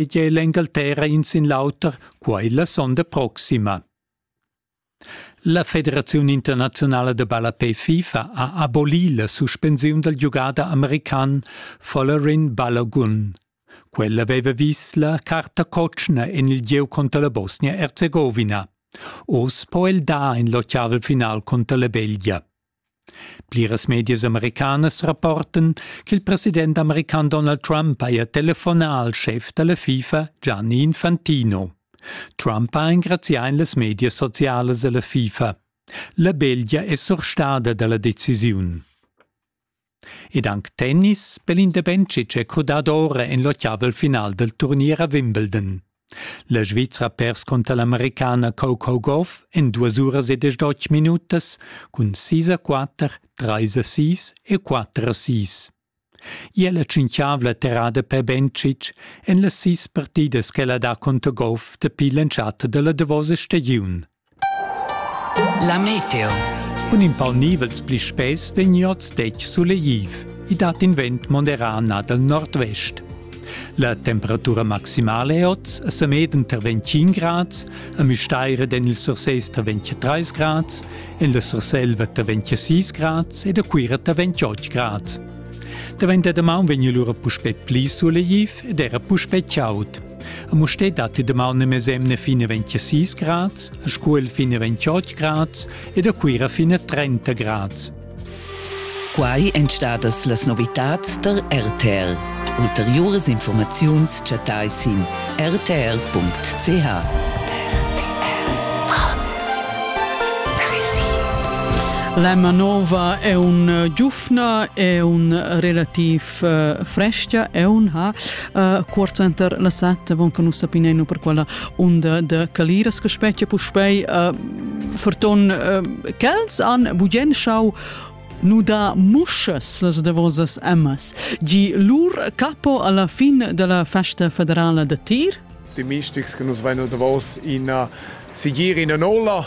e gia l'Engalterra in sin l'auter, quai la sonda proxima. La Federaziun internazionala de ballapé FIFA ha abolì la suspensiun dal giugada american Follarin Balogun. Quella aveva vis la carta cotschna en il gieu contro la Bosnia-Erzegovina. Oz po el dar in lottavel final contro la Belgia. Pliras medias americanas rapportan ch'il president american Donald Trump haja telefonà al schef da la FIFA Gianni Infantino. Trump ha engrazià en las medias socialas a la FIFA. La Belgia è surstada da la decisiun. ed anc tennis per in da Bencic è crudà d'ora en l'ottavel final dal turnier a Wimbledon. La Svizra ha pers cunter l'Americana Coco Gauff en duas uras e desch minutas cun 6 a 4, 3 a 6 e 4 a 6. Ia la tschintgavla terrada per Bencic en las sis partidas ch'ella dà conter Goff dapi l'entschatta da la davosa stagiun. La meteo. Cun in pau nivels pli spess vegn oz detg sulegliv. I dat in vent moderà nà dal nordvest. La temperatura maximale è oz a Sameden tar 25 grads, a Müstair ed en il Surses tar 23 grads, en la Surselva tar 26 grads ed a Cuira tar 28 grads. Davent da damaun vegn lura puspè pli sulegliv ed era puspè chaud. A Musté datti daman ne mesemne fine 26 grads, a Scuol fine 28 grads ed a Cuira fine 30 grads. Quai èn stadas las novitads der RTL. Ulteriores Informaziuns chattai sin rtl.ch. La manova è un eh, giufna, è un relativ frescia eun ha uh, quarzenter la setta von che nus sapineno per quella onda de caliras che specchia puspei uh, ferton uh, quels han bugen schau nuda musches las davosas emmas gi lur capo alla fin della festa federala de tir Die Mischstücks, que nus vain davos in uh, sigir in ola,